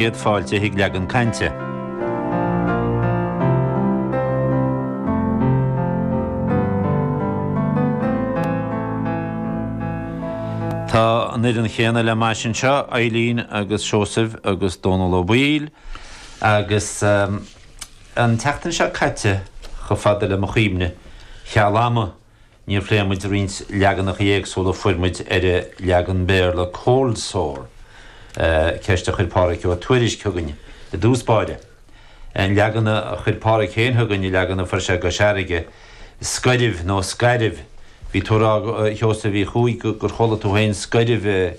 chéad fáilte chuig Leagan Cainte. Tá an fhoireann chéanna le m'ais anseo, Eilín agus Seosamh agus Dónall Ó Baoill agus an tseachtain seo caite, chomh fada le mo chuimhne, cheal ama, Níor phléigh muid roinnt leaganacha éagsúla a fuair muid ar an leagan Béarla 'cold sore', ceist a chuir Pádraig Ó Tuairisc chugainn i dtús báire. An leagan a chuir Pádraig féin chugainn, an leagan a fuair sé i gCois Fharraige, 'scairbh' nó 'scairbh'. Bhí tú ag rá, a Sheosaimh Uí Chuaig, gur chuala tú féin 'scairbh'.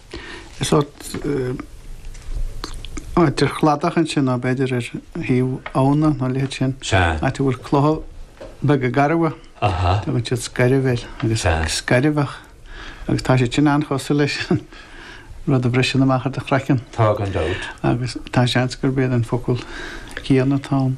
Is sórt áit ar chladach ansin nó b'fhéidir ar thaobh abhna nó a leithéid sin, áit a bhfuil clocha beaga garbha. Tugann siad scairbh air agus scairbheach agus tá siad sin an-chosúil leis an rud a bhriseann amach ar do chraiceann. Tá gan dabht. Agus tá seans gurb é an focal céanna atá ann.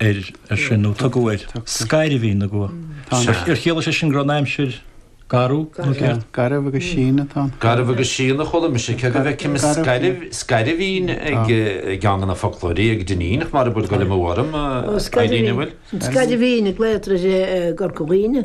air ar sin, nó tugtar scairbhín na gcuach. Ar chiallaigh sé sin go raibh an aimsir garbh, nó céard? Garbh agus síon atá ann. Garbh agus síon a chuala mise, cé go bhfeicim scairbhín ag ceann de na foclóirí ag Dinneen, ach mara bhfuil dul amú orm, Eilín, an bhfuil? Scairbhín a glaotar i gCorca Dhuibhne.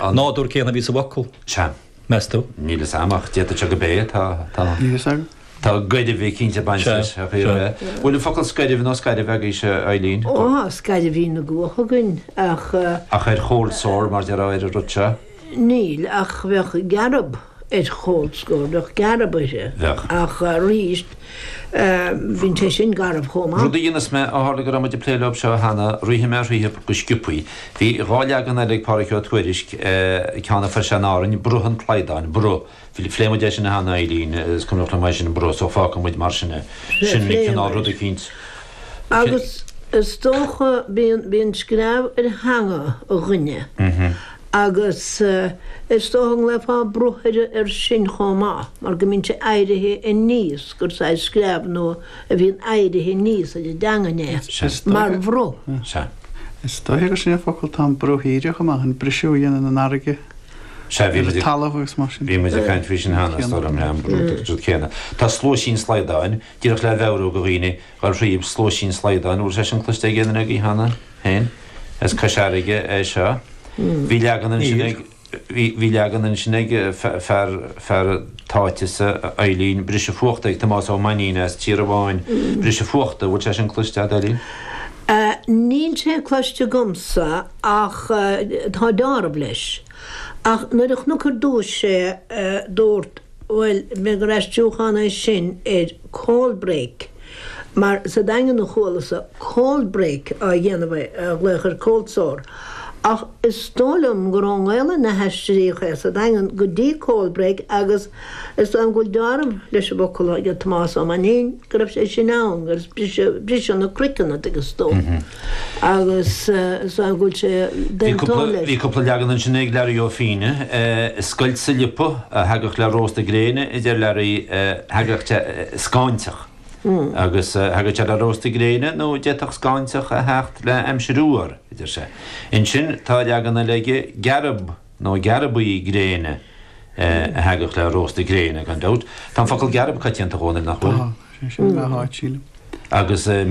An nádúr céanna a bhí sa bhfocal, meas tú? Níl 'fhios a'm ach d'fhéadfadh sé gob é, tá, tá. Níl 'fhios a'm. Tá gairbhe cinnte ag baint leis. Sea, sea. Bhfuil an focal scairbh nó scairbh agaibhse, a Eilín? Ó, scairbhín na gcuach againn ach. Ach ar chold sore mar déarfá, ar an rud seo? Níl, ach bheadh gearb. ar chold sore, gearb air. Bheadh. Ach arís, bíonn sé sin garbh chomh maith. Rud a dhéanfas mé, ó tharla go raibh muid ag plé leob seo cheana, rithfidh mé thríothub go sciopthaí. Bhí dhá leagan eile ag Pádraig Ó Tuairisc, ceann a fuair sé in Árainn, Bruth an tSlaghdáin, Bruth. Phléigh muid é sin cheana, a Eilín, is cuimhneach liom é sin, Bruth, so fágfaidh muid mar sin é. Sin an cineál ruda eicínt. Agus is dócha, bíonn screamh ar theanga dhuine. Agus is dócha go nglaofá bruth air sin chomh maith, mar go mbíonn sé éirithe aníos gur saghas screamh nó a bhíonn éirithe aníos ar an dteangain é, mar bhruth. Is dóiche gur sin an focal atá in bruthaíre chomh maith, an briseadh a dhéanann an fharraige ar an talamh agus mar sin. Bhí muid ag caint faoi sin cheana, is dóigh liom, an brúchtadh céanna. Tá sluaisín slaghdáin, díreach le mheabhrú do dhaoine gur shíob sluaisín slaghdáin, bhfuil sé sin cloiste ag aon duine agaibh cheana féin? as Cois Fharraige é seo. Bhí leagan ansin ag. Níor. Bhí leagan ansin ag fear, fear t'áitese, a Eilín, Briseadh Fuachta, ag Tomás Ó Mainnín as Tíorabháin, Briseadh Fuachta, bhfuil sé sin cloiste agat, Eilín? Níl sé cloiste agamsa ach tá deáramh leis. Ach nuair a chonac ar dtúis é, dúirt. Bhuel, b'fhéidir gur aistriúchán é sin ar 'cold break', mar sa Daingean a chualas-sa 'cold break' á dhéanamh air, á ghlaoch ar 'cold sore'. Ach is dóigh liom gur ón nGaelainn a haistríodh é sa Daingean go dtí 'cold break' agus is dóigh liom go bhfuil deáramh leis an bhfocal aige Tomás Ó Mainnín, go raibh sé sin ann, agus briseadh na croiceanna, tuigeann tú. agus is dóigh go bhfuil sé den toil air. Bhí cúpla leagan ansin ag Learaí Ó Fínne, 'scoilt sa liopa a thagadh le rósta gréine', a deir Learaí, 'thagadh scáinteach agus thagadh sé le rósta gréine' nó 'd'fhéadfadh scáinteach a theacht le haimsir fhuar', a deir sé. Ansin tá leagan eile aige, 'gearb nó gearbaí gréine a thagadh le rósta gréine', gan dabht. Tá an focal 'gearb' coitianta a dhóthain, nach bhfuil? Tá, sin é an dara háit, sílim. Agus.